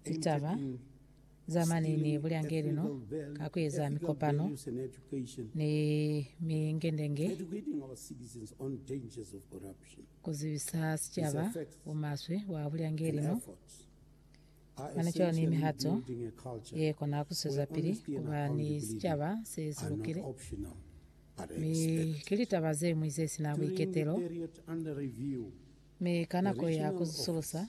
litaba za mani ni bulyangelino ka kueza mikopano ni mingendenge kuzibisa sicaba bumaswe bwa bulyangelino. Mane cwalo ni mihato yekona kuswezapili kuba ni sicaba se silukile, mi ki litaba zeñwi zesina buiketelo, mi ka nako ya kuzisulusa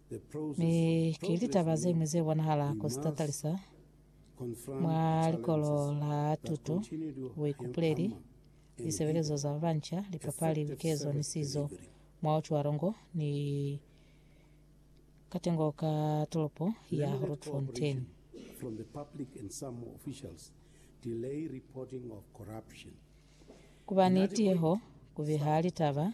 Mi ki litaba zeñwi ze bonahala ku sitatalisa mwa likolo la tuto, buikupuleli, lisebelezo za babanca, lipapali, likezo ni sizo, mwa ucwalo ngo ni katengo ka tolopo ya Grootfontein. Ku ba ni tiyeho ku biha litaba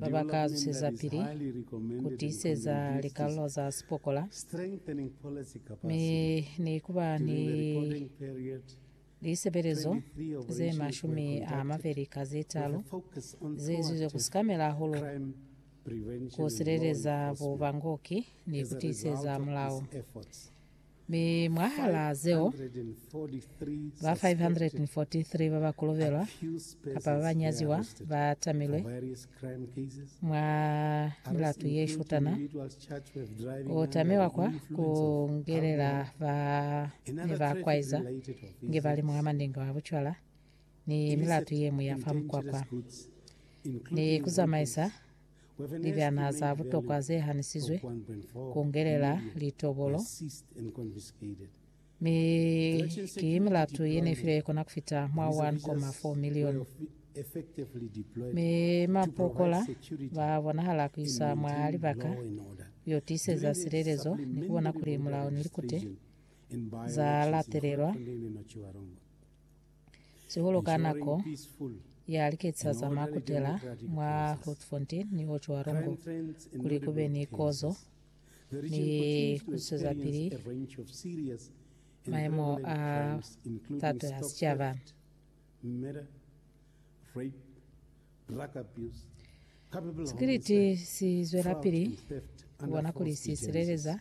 ba ba ka zusezapili ku tiiseza likalolo za sipokola mi ni ku ba ni lisebelezo ze mashumi a mabeli ka ze talu ze izizwe ku sikamela hahulu ku sileleza bubangoki ni ku tiiseza mulao. Mi mwahalaa zeo, ba 543 ba ba kolobelwa kapa ba ba nyaziwa ba tamilwe mwa milatu ye shutana. Ku tamiwa kwa ku ngelela ba ne ba kwaiza nge ba li mwa mandenge wa bucwala ni milatu ye ñwi ya fa mukwakwa, ni ku zamaisa Libyana za butokwa ze hanisizwe, ku ngelela litobolo, mi ki milatu ye ne filwe ye kona ku fita mwa 1.4 milioni, mi mapokola ba bonahala ku isa mwa libaka yo tiiseza silelezo ni ku bona kuli mulao ni likute za latelelwa. sihulu ka nako ya liketisa za makutela mwa Grootfontein ni Ho Chua Rongo kuli ku be ni kozo ni ku zwezapili maemo a tato ya sicaba. Sikiliti si zwelapili ku bona kuli si sileleza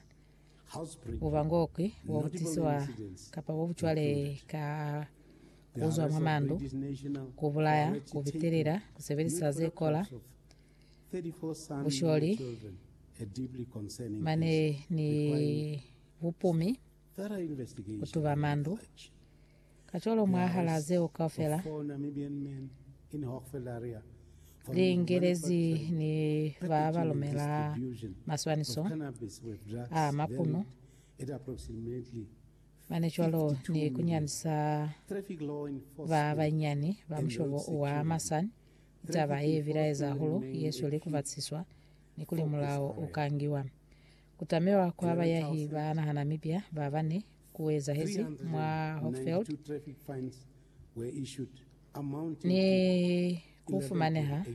Bubangokwi bo butisiwa kapa bo bucwale ka kuzwa mwa mandu, kubulaya, kubitelela, kusebelisa ze kola, busholi, mane ni bupumi, kutuba mandu, Kacwalo mwahalaa zeo kaufela, liingelezi ni ba ba lumela maswaniso a mapuno mane cwalo ni kunyandisa ba banyinyani ba mushobo wa Masan, ki taba ye bilaeza hahulu ye sweli kubatisiswa ni kuli mulao u ka ngiwa. Ku tamiwa kwa bayahi ba nahana mibya ba bane ku ezahezi mwa Hochfeld ni ku fumaneha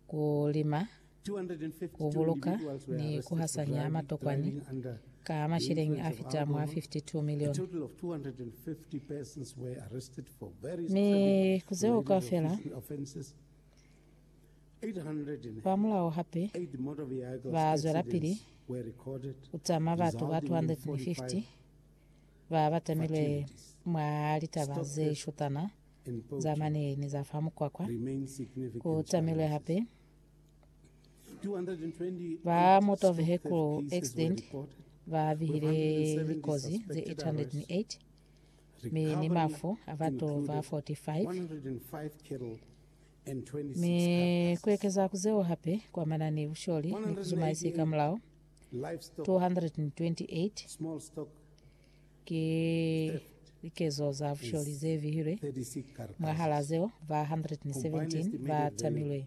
ku lima, ku buluka ni ku hasanya matokwani ka mashilingi a fita mwa 52 milioni. Mi ku zeo kaufela, Kwamulaho hape, ba zwelapili ku tama batu ba 250 ba ba tamilwe mwa litaba ze shutana za mane ni za fa mukwakwa. Ku tamilwe hape ba motor vehicle accident ba bihile likozi ze 808 mi ni mafu a batu ba 45. Mi ku ekeza ku zeo hape kwa manani ku sholi ni ku zuma isi ka mulao, 228 ki likezo za busholi ze vihilwe, mwahal'a zeo ba 117 ba tamilwe.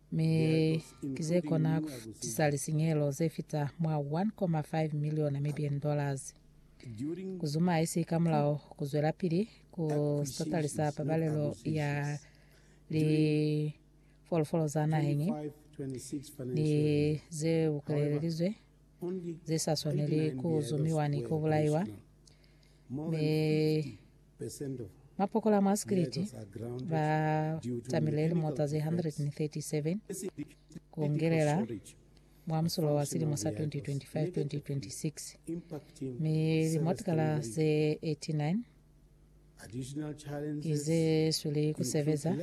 Mi ki ze kona ku tisa lisinyehelo ze fita mwa 1.5 miliona Mibian dollars. Ku zuma haisi ka mulao ku zwelapili ku satalisa pabalelo ya lifolofolo za naheñi ni ze bukelelelizwe ze sa swaneli ku zumiwa ni ku bulaiwa, mi Mapokola a mwa Sikiliti ba tamile lilimo za ze 137 ku ungelela mwa musulo wa silimo sa 2025-2026, mi limotikala ze 89 ki ze sweli ku sebeza,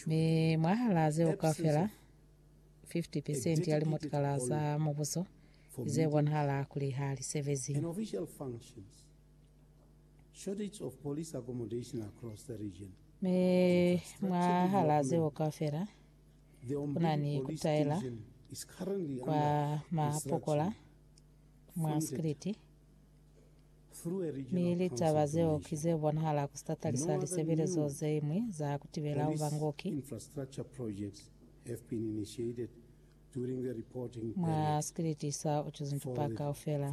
mi mwahal'a zeo kaufela, 50 percent ya limotikala za mubuso ki ze bonahala kuli ha li sebezi. Shortage of police accommodation across the region. Mi mwahalaa zeo kaufela, kuna ni kutaela kwa mapokola mwa Spliti, mi litaba zeo ki ze bonahala ku sitatali sa lisebelezo ze ñwi za kutibela ubangoki mwa Spliti sa Uchuzintupa kaufela.